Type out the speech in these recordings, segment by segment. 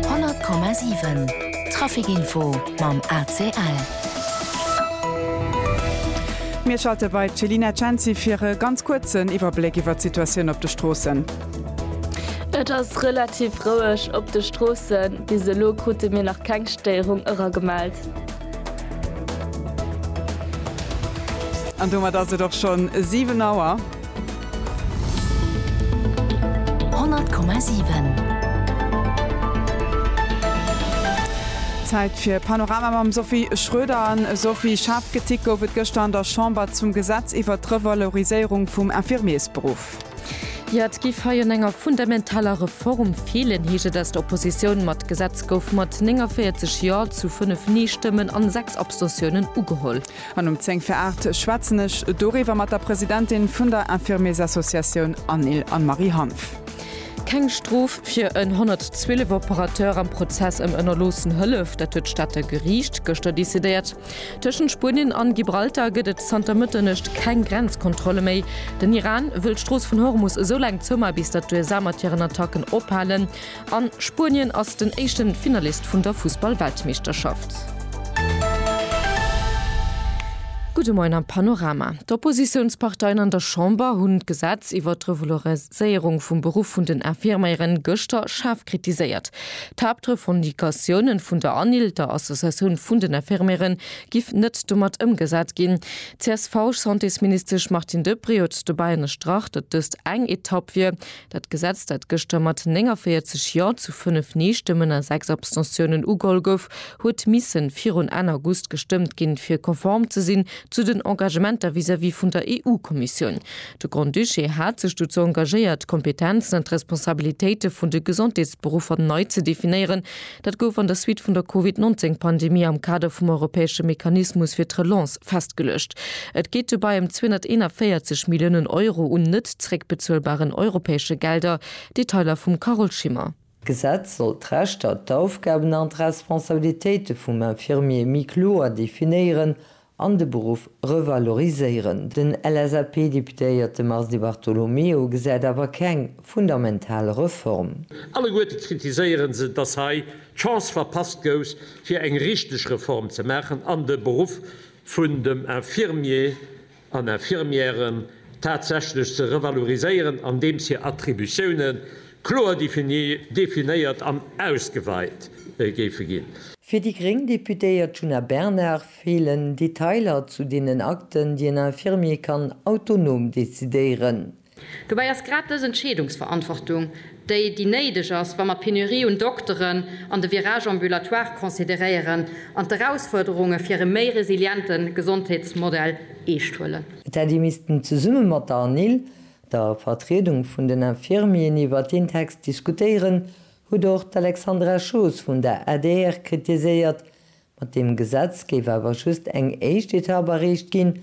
100,7 Traficinfo mam ACL. Mir schalte bei d'Chelina Cenci fir e ganz kuerzen Iwwerbléck iwwert d'Situatioun op de Stroossen. Et ass relativ roueg op de Stroossen. Bis elo krute mir nach keng Stéierung eragemellt. An domat ass et och schonn 7 Auer. Zäit fir Panorama mam Sophie Schröder. Sophie, schaarf Kritik gouf et gëschter an der Chamber zum Gesetz iwwert d'Revaloriséierung vum Infirmiersberuff. Jo, et géif hei un enger fundamentaler Reform feelen, heescht et aus der Oppositioun. Ma d'Gesetz gouf mat 49 Jo zu 5 Nee-Stëmmen an 6 Abstentiounen ugeholl. An um 10 vir 8 schwätzen ech doriwwer mat der Presidentin vun der Infirmiersassociatioun Anil Anne-Marie Hanff. Keng Strof fir en 112 Operateur am Prozess ëm ënnerloossen Hëllef, dat huet d'Stater Geriicht gëschter decidéiert. Tëschent Spuenien an Gibraltar gëtt et zanter Mëtternuecht keng Grenzkontrolle méi. Den Iran wëll d'Strooss vun Hormus esoulaang zouma bis datt d'USA mat hiren Attacken ophalen. A Spuenien ass den éischte Finalist vun der Fussball-Weltmeeschterschaft. Gudde Moien am Panorama. D'Oppositiounsparteien an der Chamber hunn d'Gesetz iwwert d'Revaloriséierung vum Beruff vun den Infirmieren gëschter schaarf kritiséiert. D'Haaptrevendicatiounen vun der ANIL, der Associatioun vun den Infirmieren, giff net domat ëmgesat ginn. D'CSV-Santésministesch Martine Deprez huet dobäi ënnerstrach, datt dëst eng Etapp wier, Dat Gesetz, dat gëschter mat 49 Jo zu 5 Nee-Stëmmen a 6 Abstentiounen ugeholl gouf, huet misse virun Enn August gestëmmt ginn, fir konform ze sinn zu den Engagementer vis-à-vis vun der EU-Kommissioun. De Grand-Duché hat sech dozou engagéiert, d'Kompetenzen an d'Responsabilitéite vun de Gesondheetsberuffer nei ze definéieren, Dat gouf an der Suite vun der Covid 19 Pandemie am Kader vum europäesche Mechanismus fir d'Relance festgeluecht. Et geet dobäi ëm 241 Milliounen Euro un net zeréckbezuelbaren europäesche Gelder. Detailer vum Carole Schimmer. D'Gesetz soll d'Rechter, d'Aufgaben an d'Responsabilitéite vum Infirmier méi kloer definéieren an de Beruff revaloriséieren. Den LSAP-Deputéierte Mars Di Bartolomeo gesäit awer keng fundamental Reform. Alleguerte kritiséiere se, datt hei d'Chance verpasst gouf, fir eng richteg Reform ze maachen an de Beruff vun dem Infirmier an Infirmière tatsächlech ze revaloriséieren, andeems hir Attributioune kloer definéiert an ausgeweit géife ginn. Fir déi gréng Deputéiert Djuna Bernard Feelen Detailer zu deenen Akten, déi en Infirmier kann autonom decidéieren? Dobäi ass grad dës Entscheedungsverantwortung déi, déi néideg ass, wa mer d'Penurie un Dokteren an de Virage ambulatoire consideréieren an d'Erausfuerderunge fir e méi resiliente Gesondheetsmodell eescht huelen. Et hätt ee missten zesumme mat der ANIL, der Vertriedung vun den Infirmieren, iwwer deen Text diskutéieren, huet och d'Alexandra Schoos vun der adr kritiséiert, Mat deem Gesetz géif awer just eng éischt Etapp erreecht ginn.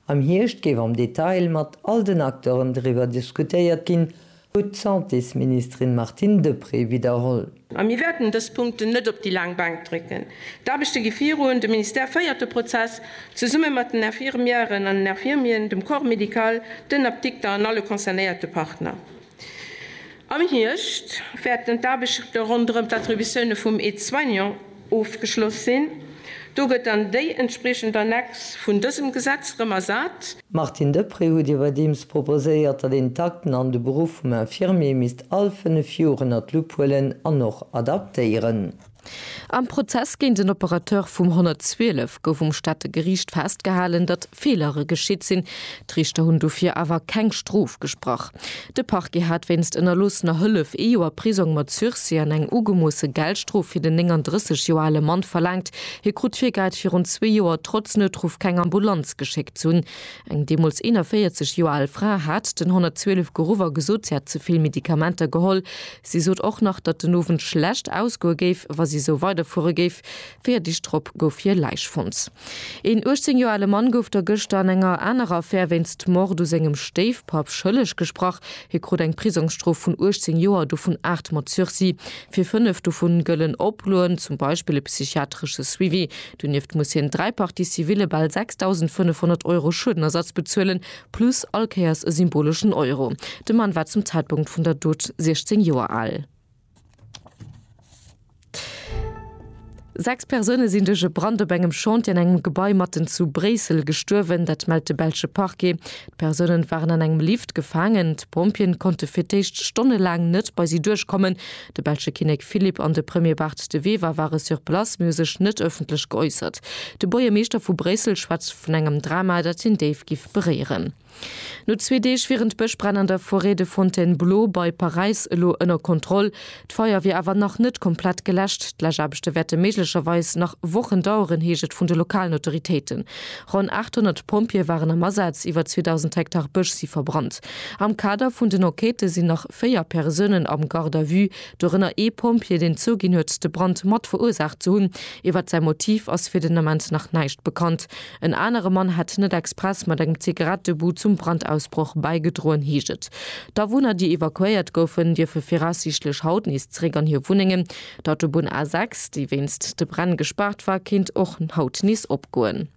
Am Hierscht géif am Detail mat all den Acteuren driwwer diskutéiert ginn, huet d'Santésministerin Martine Deprez widderholl. A mir wäerten dës Punkten net op déi laang Bank drécken. D'Aarbechte gi virun, de Ministère féiert de Prozess zesumme mat den Infirmièren an den Infirmieren, dem Corps médical, den Apdikter an alle concernéierte Partner. Am Hierscht wäerten d'Aarbechte ronderëm d'Attributioune vum Aide-soignant ofgeschloss sinn. Do gëtt dann déi entspriechend Annex vun dësem Gesetz erëm ersat. Martine Deprez, Hutt Dir iwwerdeems proposéiert, datt een d'Akten an de Beruff vum Infirmier misst all fënnef Joer ënner d'Lupp huelen an och adaptéieren? Am Prozess géint en Operateur vum 112 gouf um Stater Geriicht festgehalen, datt Feelere geschitt sinn. D'Riichter hunn dofir awer keng Strof gesprach. De Parquet hat wéinst ënnerloossener Hëllef ee Joer Prisong mat Sursis an eng ugemoosse Geldstrof fir den 39 Joer ale Mann verlaangt. Hie krut virgeheit, virun zwee Joer trotz Noutruff keng Ambulanz geschéckt ze hunn. Eng deemools 41 Joer al Fra hat den 112 geruff a gesot, si hätt ze vill Medikamenter geholl. Si sot och nach, datt den Owend schlecht ausgoe géif, wa si sou weiderfuere géif. Véier Deeg drop gouf hir Läich fonnt. Een 18 Joer ale Mann gouf da gëschter an enger anerer Affär wéinst Mord u sengem Stéifpapp schëlleg gesprach. Hie krut eng Prisongsstrof vun 18 Joer, dovun aacht mat Sursis. Fir fënnef dovu gëllen Oploen, zum Beispill e psychiatresche Suivi. Donieft muss hien dräi Parties civile bal 6.500 Euro Schuedenersatz bezuelen, Plus all Kéiers e symboleschen Euro. De Mann war zum Zäitpunkt vun der Dot 16 Joer al. Sechs Persoune sinn duerch e Brand op engem Chantier an engem Gebai matten zu Bréissel gestuerwen. Dat mellt de belsche Parquet. D'Persoune waren an engem Lift gefaangen. D'Pompjeeën konnte fir d'éischt stonnelaang net bei si duerchkommen. De belsche Kinnek Philippe an de Premier Bart De Wever ware sur place, mee hu sech net ëffentlech geäussert. De Buergermeeschter vu Bréissel schwätzt vun engem Drama, dat hien déif giff beréieren. No zwee Deeg wieren d'Bëschbränn an der Forêt de Fontainebleau bei Paräis elo ënner Kontroll. D'Feier wier awer nach net komplett geläscht. D'Läschaarbechte wäerte méiglecherweis nach Wochen daueren, heescht et vun de lokalen Autoritéiten. Ronn 800 Pompjeeë waren am Asaz. Iwwer 2.000 Hektar Bësch si verbrannt. Am Kader vun den Enquêtë sinn nach véier Persounen am Garde à vue, dorënner ee Pompjee, deen zouginn huet, de Brand mat verursaacht ze hunn. Iwwert säi Motiv ass fir den Ament nach näischt bekannt. En anere Mann hätt net express mat engem Zigarettebou zum Brandausbroch bäigedroen, heescht et. D'Awunner, déi evakuéiert goufen, dierfe viraussiichtlech haut nees zeréck an hir Wunnengen. D'Autobunn A6, déi wéinst de Bränn gespaart war, kéint och haut nees opgoen.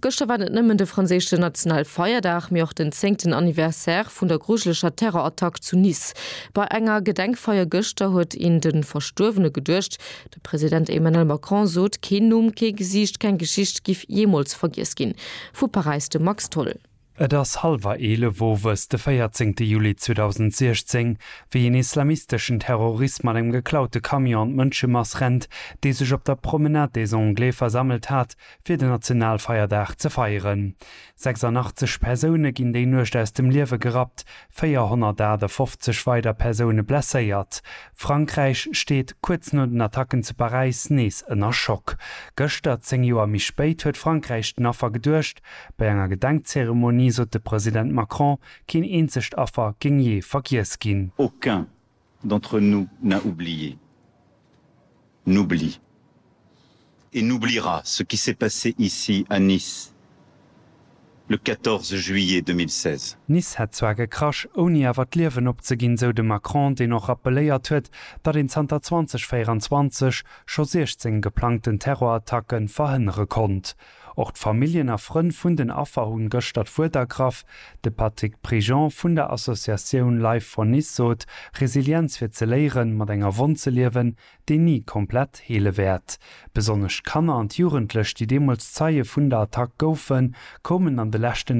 Gëschter war net nëmmen de franséische nationale Feierdag, mee och den zéngten Anniversaire vun der grujeleger Terrorattack zu Nice. Bei enger Gedenkfeier gëschter huet een de Verstuerwene geduecht. De President Emmanuel Macron sot, keen Numm, kee Gesiicht, keng Geschicht giff jeemools vergiess ginn. Vu Paräis de Max Tholl. Et ass hallwer 11 owes de 14 Juli 2016, wéi een islamisteschen Terrorist mat engem geklaute Camion an d'Mënschemass rennt, déi sech op der Promenade des Anglais versammelt hat, fir den Nationalfeierdag ze feieren. 86 Persoune ginn déi Nuecht aus dem Liewe gerappt, 458 weider Persoune blesséiert. Frankräich steet, kuerz no den Attacken zu Paräis, nees ënner Schock. Gëschter, 10 Joer méi spéit, huet Frankräich den Affer geduecht, Bei enger Gedenkzeremonie sot de President Macron, keen eenzegt Affer géing jee vergiess ginn. Aucun d'entre nous n'a oublié, n'oublie et n'oubliera ce qui s'est passé ici à Nice le 14 juillet 2016. Nice hätt zwar gekrasch, ouni awer d'Liewen opzeginn, sou de Macron, deen och rappeléiert huet, datt een zanter 2024 scho 16 geplangten Terrorattacke verhënnere konnt. Och d'Familljen a Frënn vun den Affer hunn gëschter d'Wuert ergraff. De Patrick Prigent vun der Associatioun Life for Nice sot, Resilienz fir ze léieren, mat enger Wonn ze liewen, déi ni komplett heele wäert. Besonnesch d'Kanner an d'Jugendlech, déi deemools Zeie vun der Attack goufen, koumen an de leschten